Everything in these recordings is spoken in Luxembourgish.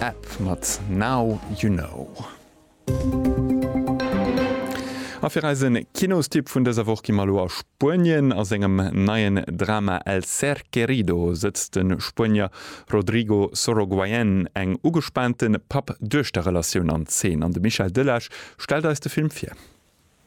App mat Now You Know. A fir eise Kinostipp vun dëser Woch gi mer elo a Spuenien. A sengem neien Drama El ser querido sëtzt de Spuenier Rodrigo Sorogoyen eng ugespaante Papp-Duechter-Relatioun an Zeen an de Michel Delage stellt eis de Film vir.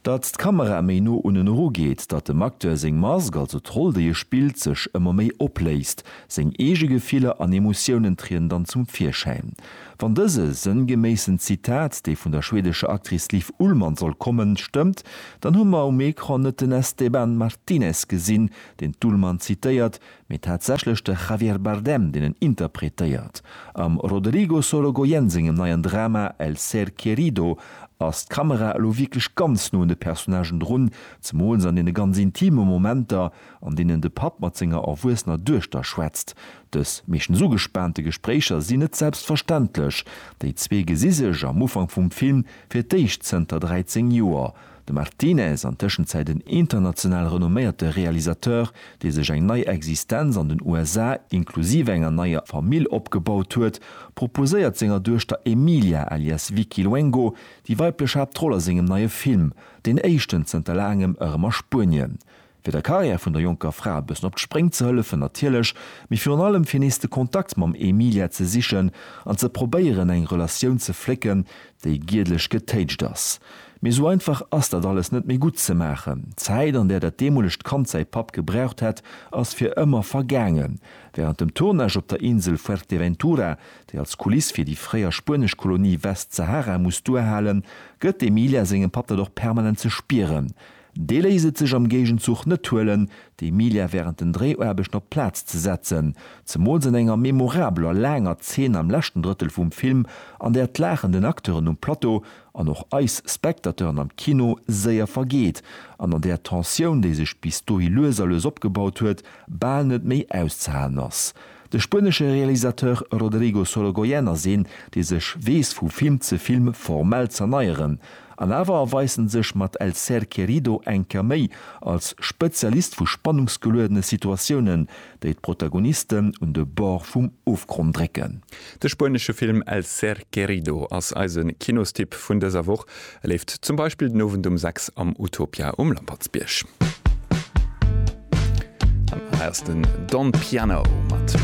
Datt d'Kamera méi no unnen eru geet, datt dem Acteur seng Mask, also d'Roll déi e spillt, sech ëmmer méi opléist. Seng eege Gefiller an Emotiounen trieden dann zum Virschäin. Wann dëse sënngeméissen Zitat, dee vun der schwedescher Actrice Liv Ullmann soll kommen, stëmmt, dann hu mer um Ecran net den Esteban Martinez gesinn, deen d'Ullmann zitéiert, Mee tatsächlech de Javier Bardem, deen en interpretéiert. Am Rodrigo Sorogoyen sengem neien Drama El ser querido ass d'Kamera elo wierklech ganz no un de Personnagen drun, zemools an deene ganz intime Momenter, an deenen de Papp mat senger erwuessener Duechter schwätzt. Dës meeschtens ugespaante Gespréicher sinn net selbstverständlech. Déi zwee gesi sech am Ufank vum Film fir d'éischt zënter 13 Joer. De Martinez, an Tëschenzäit en international renomméierte Realisateur, dee sech eng nei Existenz an den USA, inklusiv enger neier Famill opgebaut huet, proposéiert senger Duechter Emilia alias Vicky Luengo déi weiblech Haaptroll a sengem neie Film, deen éischten zënter laangem, erëm a Spuenien. fir der Karriär vun der jonker Fra e bëssen op d'Spréng ze hëllefen natierlech, mee virun allem fir nees de Kontakt mam Emilia ze sichen an ze probéieren eng Relatioun ze flécken, déi giedlech getéitscht ass. Mee esou einfach ass dat alles net méi gutt ze maachen. D'Zäit an där dat deemolegt Kand säi Papp gebraucht hätt, ass fir ëmmer vergaangen. Wärend dem Tournage op der Insel Fuerteventura, déi als Kuliss fir déi fréier spuenesch Kolonie Westsahara muss duerhalen, gëtt d'Emilia sengem Papp dat och permanent ze spieren, Dee léisst et sech am Géigenzuch net huelen, d'Emilia wärend den Dréiaarbechten op d'Plaz ze setzen, zemools an enger memorabeler laanger Zeen am leschten Drëttel vum Film, an där d'Laachen den Acteuren um Plateau an och eis Spectateuren am Kino séier vergeet an an där d'Tensioun, déi sech bis dohi lues a lues opgebaut huet, bal net méi auszehalen ass. De spuenesche Realisateur Rodrigo Sorogoyen ass een, dee sech weess vu Film ze Film formell z'erneieren. An awer erweist en sech mat El ser querido eng Kéier méi als Spezialist vu spannungsgeluedene Situatiounen, déi d'Protagonisten un de Bord vum Ofgronn drécken. De spuenesche Film El ser querido ass eise Kinostipp vun dëser Woch. E leeft zum Beispill den Owend um 6 am Utopia um Lampertsbierg. Hei ass den Don Piano mat Rain.